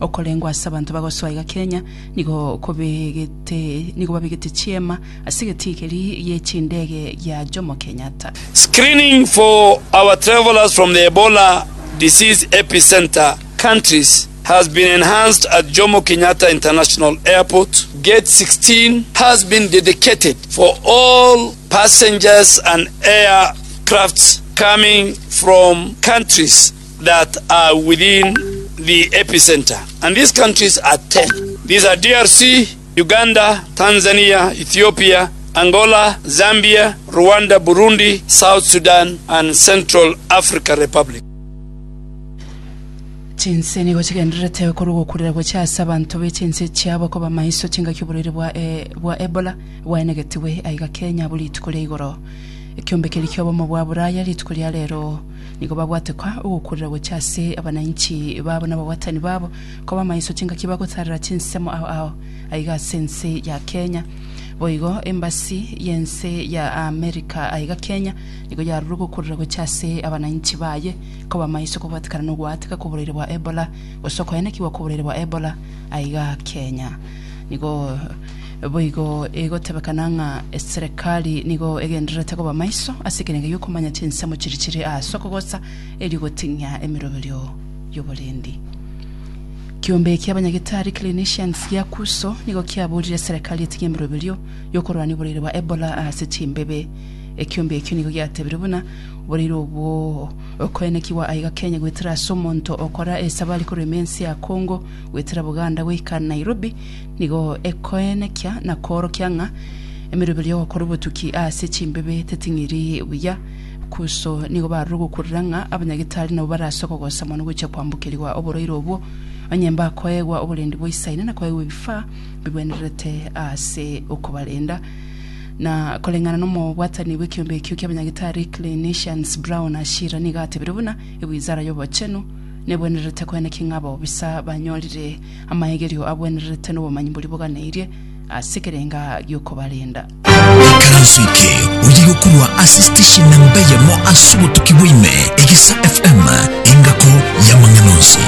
Okorengwa ase abanto bagosoa iga Kenya nigo kobegete nigo babegete chiema ase egetii keria gie chindege gia Jomo Kenyatta. Screening for our travelers from the Ebola disease epicentre countries has been enhanced at Jomo Kenyatta International Airport. Gate 16 has been dedicated for all passengers and aircrafts coming from countries that are within the epicentre, and these countries are ten. These are DRC, Uganda, Tanzania, Ethiopia, Angola, Zambia, Rwanda, Burundi, South Sudan, and Central Africa Republic. Chinse nigo chigendererete korwa ogokurera gochia ase abanto be chinse chiabo koba maiso chingaki oborwaire bwa e- bwa Ebola bwaenegetigwe aiga Kenya buri rituko ria igoro. Ekiombe keria kiobomo bwa Buraya rituko ria rero Nigo babwate koa ogokurera gochia ase abanainchi babo na ababwatani babo, koba amaiso chingaki bagotarera chinsemo ao ao. Aiga ase ense ya Kenya, boigo embasi y'ense ya America aiga Kenya nigo yarure ogokurera gochia ase abanainchi baye, koba amaiso kobwatekana nogoateka koborwaire bwa Ebola, gose okoenekigwa koborwaire bwa Ebola aiga Kenya. Nigo boigo egotebekana ng'a eserekari nigo egendererete koba maiso ase ekerengo gi'okomanya chinsemo chiria chire ase okogosa erio goting'ia emeroberio y'oborendi. Kiombe kia abanyagitari, clinicians, gia Kuso nigo kiaborire eserekari etige emeroberio y'okorwania oboreiri bwa Ebola ase chimbebe. Ekiombe ekio nigo giatebire buna oboreiri obwo okoenekigwa aiga Kenya goetera ase omonto okora esabari korwa ime ense ya Congo Goetera Buganda goika Nairobi nigo ekoenekia na koorokia ng'a emeroberi y'ogokora obotuki ase chimbibe teting'iri buya. Kuso nigo barure gokurera ng'a abanyagitari nabo barase okogosa mono gochia kwambokerigwa oborwaire obwo, onye mbakoegwa oborendi bwa isaine na koegwa ebifaa bigwenererete ase okobarenda. Na koreng'ana n'omobwatani bw'ekeombe ekio ki'abanyagitari Clinicians Brown Ashira nigo atebire buna ewizara y'obochenu Nebwenerete kwene ki ng'a bobisa banyorire amaegerio abwenerete nobomanyi boria boganeirie ase ekerenga giokobarenda? Ekaranso eke oye gokorwa ase station namba eyemo ase obotuki bwa ime, Egesa FM, engako y'amang'ana onsi.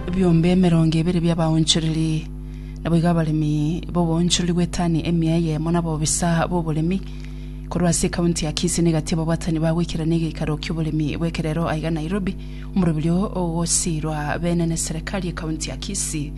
Ebiombe emerongo ebere bi'abaonchoreri naboigo abaremi b'oboonchoreri bw'etani emia eyemo na bobisa b'oboremi, Korwa ase ekaunti ya Kisii negati ababwatani ba goikerana egeikaro ki'oboremi bw'ekerero aiga Nairobi, omorobiri oo ogosiirwa beene ne serikali y'ekaunti ya Kisii.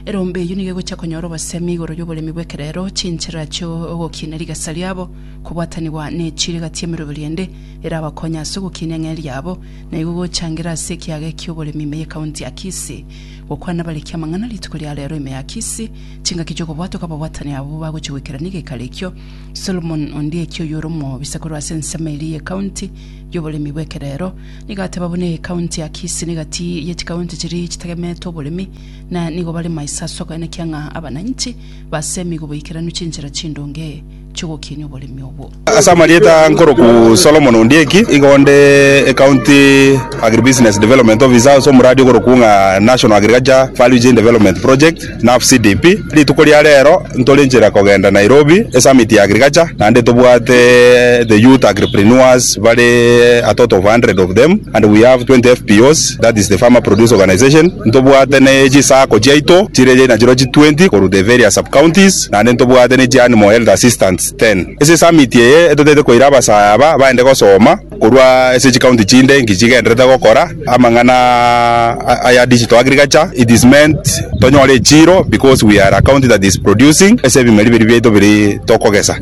Erombe eyio nigo egochia konyora obosemi igoro y'oboremi bw'ekerero, chinchera chi'ogokinia rigesa riabo, kobwatanigwa nechire gati y'emeroberi ende erabakonye ase ogokinia eng'e riabo na igo gochangira ase ekiaga eki'oboremi ime y'ekaunti ya Kisii. Gokwana bariki amang'ana rituko ria rero ime ya Kisii, chingaki chi'okobwatoka ababwatani abwo bagochia goikerana egeikaro ekio Solomon Ondieki oyore omobisa korwa ase ensemo eria y'Ekaunti y'oboremi bw'ekerero nigo ateba buna Ekaunti ya Kisii negati ye chikaunti chiria chitegemetwe oboremi na nigo barema ase ase okoenekia ng'a abananchi basemi goboikeranu chinchera chindonge chi'ogokinia oboremi obwo. Ase amarieta nkoroku Solomon Ondieki, igo nde ecounty agribusiness development officer ase omoradi okoroku ng'a National Agriculture Value Chain Development Project. NAFCDP, Rituko ria rero ntorenchire kogenda Nairobi esummit ya agriculture naende tobwate the youth agripreneurs bare a total of 100 of them and we have 20 FPOs that is the farmer produce organization ntobwate ne chi sacco chiaito chire nachireo chi 20 korwa the various sub counties naende ntobwate ne chi animal health assistants 10 ase esummit eye etotete koira abasaya aba baende gosoma Korwa ase chikaunti chinde inki chigenderete gokora amang'ana aya digital agriculture, it is meant tonyore echiro because we are a county that is producing ase ebimeri biri biaito biri tokogesa.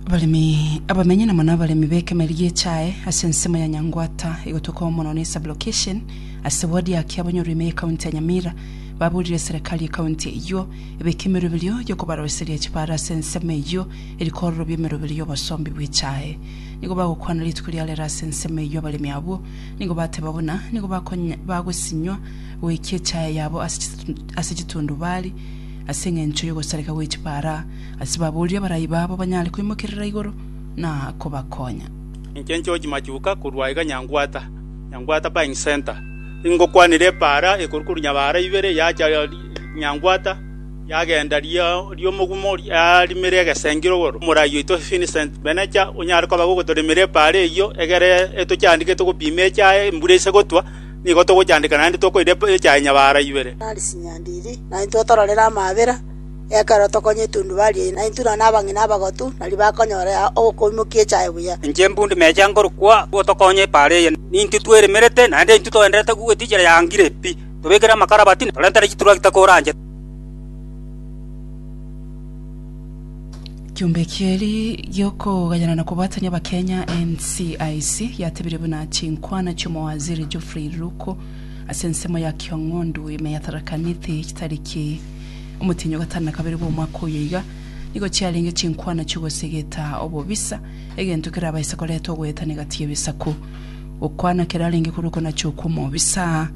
Abaremi abamenyi na mono abaremi b'ekemeri gi'echae ase ensemo ya Nyangwata egotuekwamo mono ne sub-location ase ward ya Kiabonyoru ime ye county ya Nyamira baburire serekari ye county eyio ebeke emerwe eberio y'okobaroiseria chibare ase ensemo eyio erikororo bi'emeroberi y'obosombi bwe chae. Nigo bagokwana rituko ria rero ase ensemo eyio abaremi abwo, nigo bateba buna nigo bagosinywa goikia echae yabo ase chitundubari ase engencho y'ogosareka gwe chipaara, ase baboorire abarai babo banyare koimokerera igoro na kobakonya. Inche George Machuka korwa aiga Nyangwata, Nyangwata Buying Centre, ingokwanera epaara ekorwa korwa Nyabaara ibere yacha Nyangwata. Riagenda ri'omogumo riarimire egesengire igoro, omorai oito Vincent Benecha onyare koba agogotoremera epaara eyio, egere etochandike togopima echaye embura ise gotwa, nigo togochandika naende tokoira echaye nyabara ibere. Nari chinyandiri, naintwe otororere amaabera, ekero tokonye etundubari eye, naintwe nonya abang'ina abagotu, nari bakonyora ya okoimokia echaye buya. Inche mbundi mecha ngorokwa, botokonye epaara eye, nintwe tweremerete, naende intwe toenderete kogweta inchera ya ngire pi. Tobekere amakarabati, na torentere chituragita koranche. Kiombe kieri giokogayana na kobwatania Abakenya NCIC yatebirie buna chinkwana chiomowaziri Geoffrey Ruku ase ensemo ya Kiong'ondu ime yatarakanete chitariki omotienyi ogatano na kabere bw'omwaka oyo iga nigo chiarenge chinkwana chiogosegeta obobisa egento kerabaise koreta ogoetana egati y'ebisaku gokwana kerarenge korwa okonacha okw'omobisa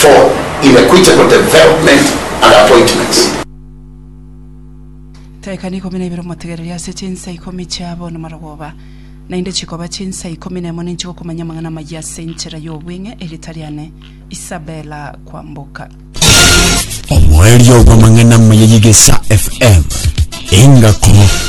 for inequitable development and appointments. Taekani ikomi na ibere omotegereria ase chinsa ikomi chiabo namarogoba, naende chikoba chinsa ikomi nemo ninche gokomanya amang'ana amayia ase enchera y'obweng'e erieta riane Isabella Kwamboka. Omoerio bw'amang'ana amaya y'Egesaa FM, Engako.